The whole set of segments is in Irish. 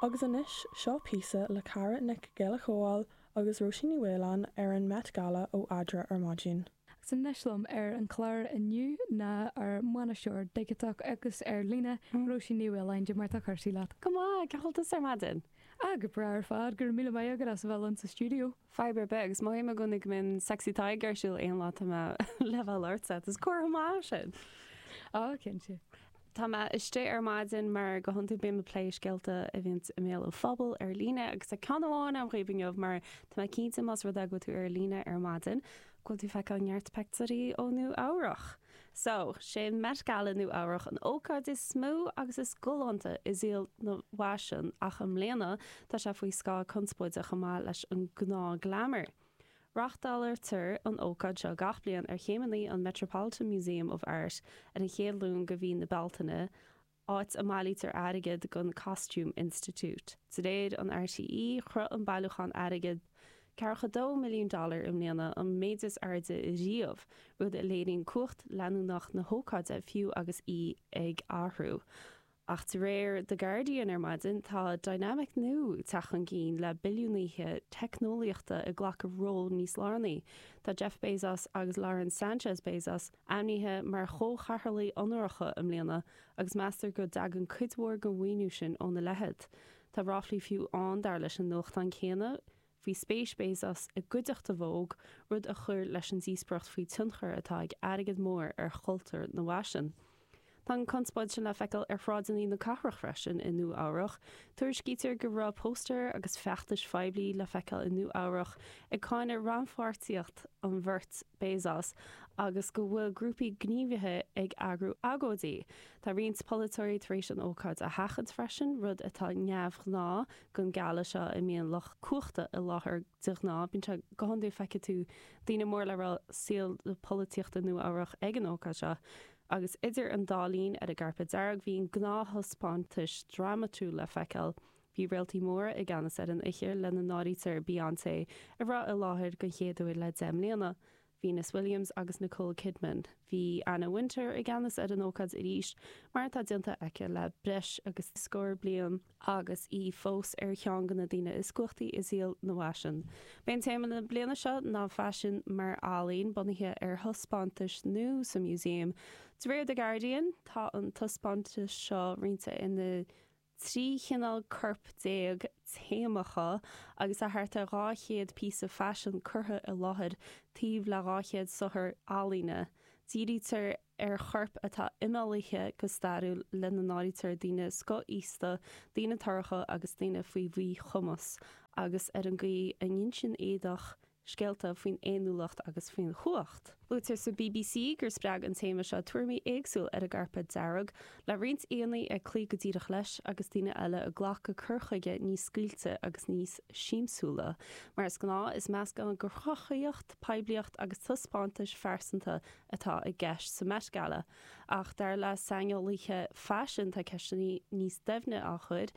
Agus anois, seo píosa le Cara Nic Giolla Chomhaill agus Róisín Ní Mhaoláin ar an Met Gala ó Adhmhaidin. Agus anois liom ar an gclár inniu ná ár mbainisteoir digiteach agus ar líne, Róisín Ní Mhaoláin. Cad é mar atá cúrsaí leat? Go maith, go hiontach ar maidin? Ah, go breá ar fad, go raibh míle maith agat as a bheith linn sa stiúideo. fadhb ar bith agus mothaím i gcónaí go mbíonn saghas taighde ar siúl aon lá tá mé ag labhairt leatsa is comhartha maith sin. Á, cinnte. Tá mé istigh ar maidin mar go hiondúil bím ag plé scéalta a bhíonns i mbéal an phobail ar líne agus tá ceann amháin agam dhaoibh inniu mar tá mé cinnte más rud é go bhfuil tú ar líne ar maidin go bhfuil tú ag feiceáil neart peictiúirí ó Nua Eabhrach. Sea, sé an Met Gala Nua Eabhrach an ócáid is mó agus is galánta i saol an fhaisin ach i mbliana tá sé faoi scáth conspóide chomh maith leis an gnáth glamour. Reachtáiltear an ócáid seo gach bliain ar chéimeannaí an Metropolitan Museum of Art ar an chéad Luan de mhí na Bealtaine, áit a mbailítear airgead don Costume Institute. De réir RTÉ, shroich an bailiúchán airgid 42 milliún dollar i mbliana, an méid is airde riamh, rud a léiríonn cumhacht leanúnach na hócáide, fiú agus í ag athrú. Ach de réir The Guardian ar maidin, tá dinimic nua ag teacht chun cinn, le billiúnaithe teicneolaíochta ag glacadh ról níos lárnaí. Tá Jeff Bezos agus Lauren Sanchez Bezos, ainmnithe mar chomhchathaoirligh onóracha i mbliana agus meastar go dtagann cuid mhór den mhaoiniú sin óna leithéid. Tá ráflaí fiú ann, dar leis an nuachtán céanna, faoi spéis Bezos i gcuideachta Vogue, rud a chuir leis an díospóireacht faoin tionchar atá ag airgead mór ar chultúr an fhaisin. Tá an chonspóid sin le feiceáil ar shráideanna na cathrach freisin i Nua Eabhrach. Tuairiscítear go raibh póstaeir agus feachtais phoiblí le feiceáil i Nua Eabhrach ag cáineadh rannpháirtíocht an bheirt Bezos agus go bhfuil grúpaí gníomhaithe ag eagrú agóidí. Tá roinnt polaiteoirí tar éis an ócáid a sheachaint freisin, rud atá neamhghnáth don Gala seo ina mbíonn lucht cumhachta i láthair de ghnáth. Bíonn sé go hiondúil feicfidh tú daoine móra le rá saol na polaitíochta Nua Eabhrach ag an ócáid seo, Agus idir an dá linn ar an gcairpéad dearg bhí an gnáth-thaispeántas drámatúil le feiceáil. Bhí réaltaí móra i gceannas ar an oíche, lena n-áirítear Beyoncé, a raibh i láthair den chéad uair le deich mbliana, Venus Williams agus Nicole Kidman. Bhí Anna Wintour i gceannas ar an ócáid arís, mar atá déanta aice le breis agus scór bliain. agus í fós ar cheann de na daoine is cumhachtaí i saol an fhaisin. B'é téama na bliana seo ná Faisean mar Ealaín, bunaithe ar thaispeántas nua sa Museum. De réir The Guardian, tá an taispeántas seo roinnte ina 13 chineál-corp téamacha, agus tá thart ar 200 píosa faisin curtha i láthair, taobh le 200 saothar ealaíne. Dírítear ar choirp atá imeallaithe go stairiúil, lena n-áirítear daoine scothaosta, daoine torracha agus daoine faoi mhíchumas, agus ar an gcaoi a n-insíonn éadach scéalta faoin fhéiniúlacht agus faoin chumhacht. Luaitear sa BBC gur spreag an téama seo tuairimí éagsúil ar an gcairpéad dearg, le roinnt aíonna ag cloí go díreach leis agus daoine eile ag glacadh cur chuige níos scaoilte agus níos siamsúla. Mar is gnáth, is meascán de chruthaíocht, poiblíocht agus taispeántais pearsanta atá i gceist sa Met Gala, ach dar le saineolaithe faisin tá ceisteanna níos doimhne á gcur.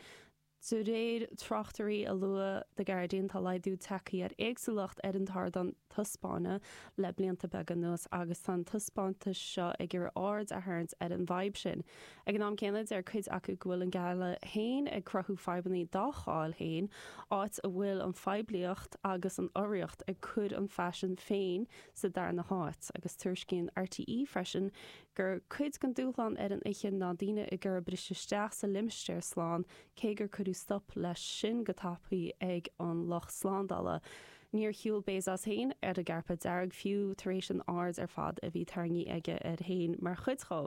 De réir tráchtairí a luadh The Guardian tá laghdú tagtha ar éagsúlacht ar an ardán taispeána le blianta beaga anuas agus tá an taispeántas seo ag iarraidh aird a tharraingt ar an bhfadhb sin. Ag an am céanna deir cuid acu go bhfuil an Gala féin ag cruthú fadhbanna dá cháil féin, áit a bhfuil an phoiblíocht agus an urraíocht ag cur an faisean féin sa darna háit, agus tuairiscíonn RTÉ freisin gur cuid den dúshlán ar an oíche ná daoine ag iarraidh briseadh isteach sa limistéar slán, cé gur cuireadh stop leis sin go tapaidh ag an lucht slándála. Níor shiúl Bezos féin ar an gcairpéad dearg, fiú, tar éis an aird ar fad a bhí tarraingthe aige air féin mar chuid dhó.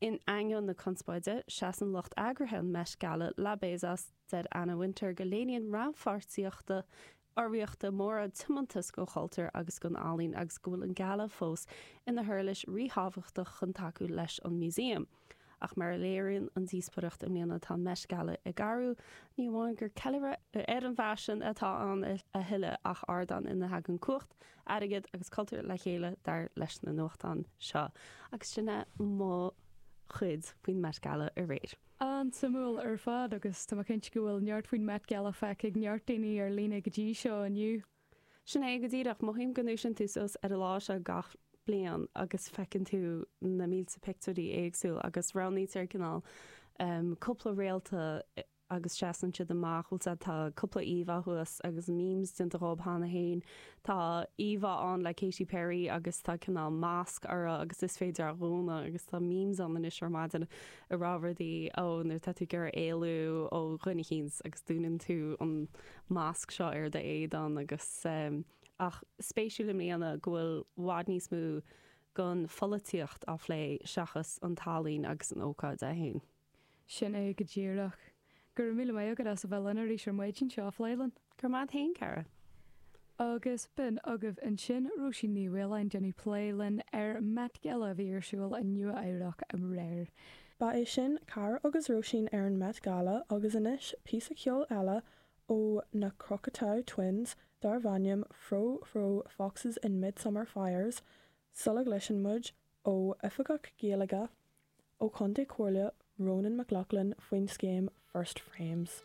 In ainneoin na conspóide, seasann lucht eagraithe an Met Gala le Bezos. Deir Anna Wintour go léiríonn rannpháirtíocht urraíochta móra, tiomantas don chultúr agus don ealaín agus go bhfuil an Gala fós ina huirlis ríthábhachtach chun tacú leis an Museum. Ach mar a léiríonn an díospóireacht i mbliana, tá an Met Gala ag athrú, ní amháin gur ceiliúradh ar an bhfaisean atá ann a thuilleadh ach ardán ina dtagann cumhacht, airgead agus cultúr le chéile, dar leis na nuachtáin seo. Agus sin é mo chuid faoin Met Gala aréir. An-suimiúil ar fad agus tá mé cinnte go bhfuil neart faoin Met Gala feicthe ag neart daoine ar líne go dtí seo inniu. Sin é go díreach. Mothaím go ndúisíonn tú suas ar an lá seo gach bliain agus feiceann tú na mílte pictiúirí éagsúil agus roghnaítear cineál cúpla réalta agus seasann siad amach, bhuel sea, tá cúpla íomhá thuas agus memes déanta dhób cheana féin. Tá íomhá ann le Katy Perry agus tá cineál masc uirthi agus is féidir é a dhúnadh agus tá memes ann anois ar maidin. ag rá rudaí, ó nuair atá tú ag iarraidh éalú ó dhuine eicínt agus dúnann tú an masc seo ar do éadan agus ehm. Ach spéisiúil i mbliana go bhfuil bhfad níos mó gon pholaitíocht á phlé seachas an ealaín agus an ócáid é féin. Sin é go díreach. Go raibh míle maith agat as a bheith linn arís ar maidin seo a phlé linn. Go raibh maith agat féin, Cara. Agus b'in agaibh ansin Róisín Ní Mhaoláin, ag déanamh plé linn ar Met Gala a bhí ar siúl i Nua Eabhrac aréir. Ba é sin Cara agus Róisín ar an Met Gala agus anois píosa ceoil eile ó na Cocteau Twins darbh ainm Frou-Frou Foxes in Midsummer Fires sula gcloiseann muid ó Oifigeach Gaeilge ó Chontae Chomhairle Ronan McLaughlin faoin scéim First Frames.